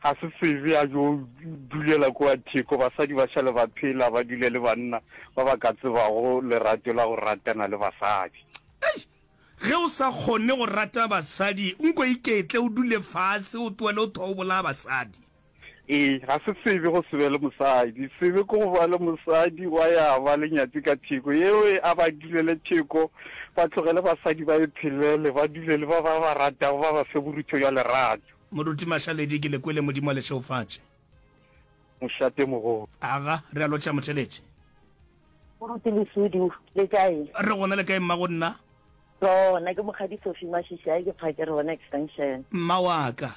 Ga se sebe a yo dulela kua theko, basadi ba šale ba phela ba dule le banna ba ba ka tsebago lerato la go ratana le basadi. Eish! Ge o sa kgone go rata basadi, nko iketle o dule fase o tlohele go thwa o bolaya basadi. Ee, ga se sebe go se be le mosadi. Sebe ke go ba le mosadi wa ya ba le nyatsi ka theko. Yeo e a ba dulele theko, ba tlogele basadi ba iphelele, ba dule le ba ba ba ratago, ba ba fe borutho bja lerato. Moruti Mašaledi, Ke le kwele Modimo a le šeofatše. Mošate mogolo. Aga, re a lotšha Motšheletše. Moruti Lesudu, Le kae? Re gona le kae mma go nna? Tlo, nna ke Mokgadi Sophie Mašishai, ke phake re bona extension. Mma wa ka.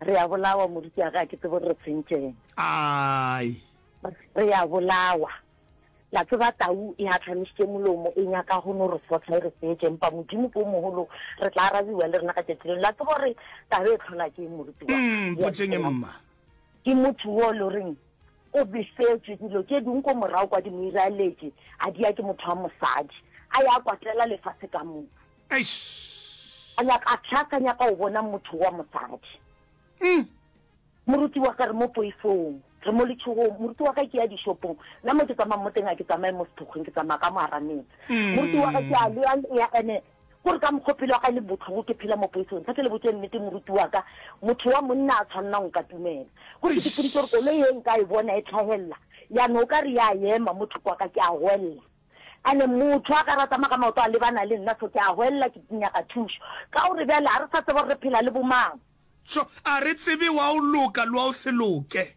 Re a bolawa Moruti aga a ke tsebe gore re tshwentšeng. Ai. Re a bolawa. La tseba tau e hatlamišitše molomo e nyaka go no re sotla e re fetše, empa Modimo ke o mogolo, re tla arabiwa le rena ka tšatši leo. La tseba gore taba e tlhola ke eng, morutiwa? Mm, mpotseng mma. Ke motho wo le reng o befetšwe dilo tše ding ko morago kwa di mo iraeletše, a di ya ke motho wa mosadi, a ya kwatela lefase ka moka. Eish! A nyaka a tlhaka, a nyaka go bona motho wa mosadi. Uhm! Moruti wa ka re mo poifong, re mo letšhogong, moruti wa ka ke ya dishopong, nna mo ke tsamaya mo teng ga ke tsamaye mo sethokgweng, ke tsamaya ka mo ara metse. Moruti wa ka ke a lea lea ene kore ka mokgwa pelo ya ka e le botlhoko ke phela mo poifong. Nthate le botše nnete moruti wa ka, motho wa monna a tshwanela go nkatumela. Kore ke sepoditše gore koloi e nka e bona e tlhahelela ya no o ka re ya ema mo thoko ga ka ke a hwelela. Ene motho a ka re a tsamaya ka maoto a lebana le nna so ke a hwelela ke nyaka thušo. Ka gore bjale ga re sa tseba gore re phela le bomang. Tšo, a re tsebe wa o loka le wa o se loke.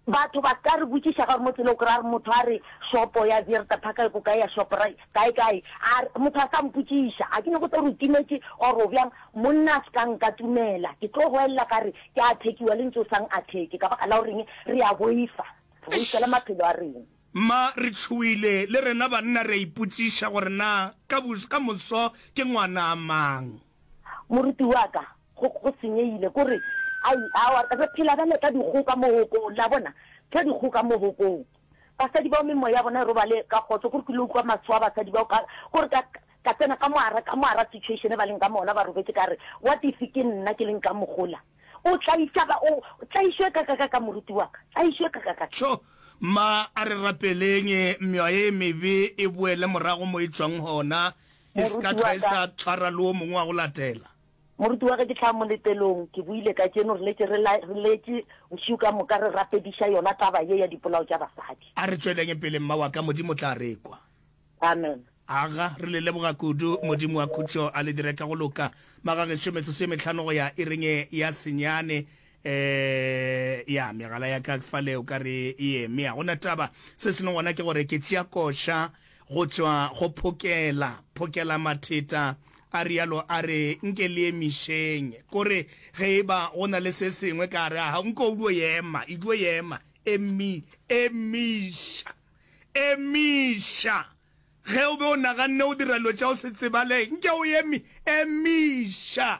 Batho ba ka re botšiša gore mo tsela o kry-a re motho a re shopo ya Zierta Park e ko kae ya Shoprite kae kae, a re motho a sa mpotšiša ga ke nyake go tlo re o timetše or o bjang. Monna a se ka nkatumela ke tlo goelela ka re ke a thekiwa le ntse o sa ngatheke ka baka la goreng re a boifa, re boifa le maphelo a rena. Mma re tšhoile le rena banna re a ipotšiša gore na ka moso ke ngwana a mang. Moruti wa ka, go, go senyegile, ko re, Ai, aowa, re phela bjale ka dikgoka mohokong. Le a bona? Ka dikgoka mohokong. Basadi bao memoya ya bona e robale ka kgotso, ko re kile utlwa maswa a basadi bao, ka, ko re ka, ka tsena ka mogara, ka mogara situation e ba leng ka mona, ba robetše, ka re, What if ke nna ke leng ka mo gola? O tlaiša ba, o, tlaišo e kakakaka, moruti wa ka, tlaišo e kakakaka. Tšho! Mma, a re rapeleng meoya e mebe e boele morago mo e tšwang gona, E se ka tlwa e sa tsara le o mongwe wa go latela. Moruti wa ge ke tla moletelong, ke buile kajeno, re letše re la, re letše bošego ka moka re rapediša yona taba ye ya dipolao tša basadi. A re tšweleng pele, mma wa ka, Modimo o tla re kwa. Amen. Aga, re le leboga kudu, Modimo wa khutšo a le dire ka go loka. Magagešo, metsotso e mehlano go ya ireng ye ya senyane, ee, ya megala ya ka fa le o ka re e eme. A gona taba, se sengwe gona ke gore ke tšea koša, Go tšwa go Phokela, Phokelamatheta a realo a re, Nke le emišeng. Ko re, ge e ba go na le se sengwe ka gare ga gago, nko o dio ema, e dio ema. Emi, emiša, emiša. Ge o be o naganne go dira dilo tša go se tsebale, nke o emi, emiša.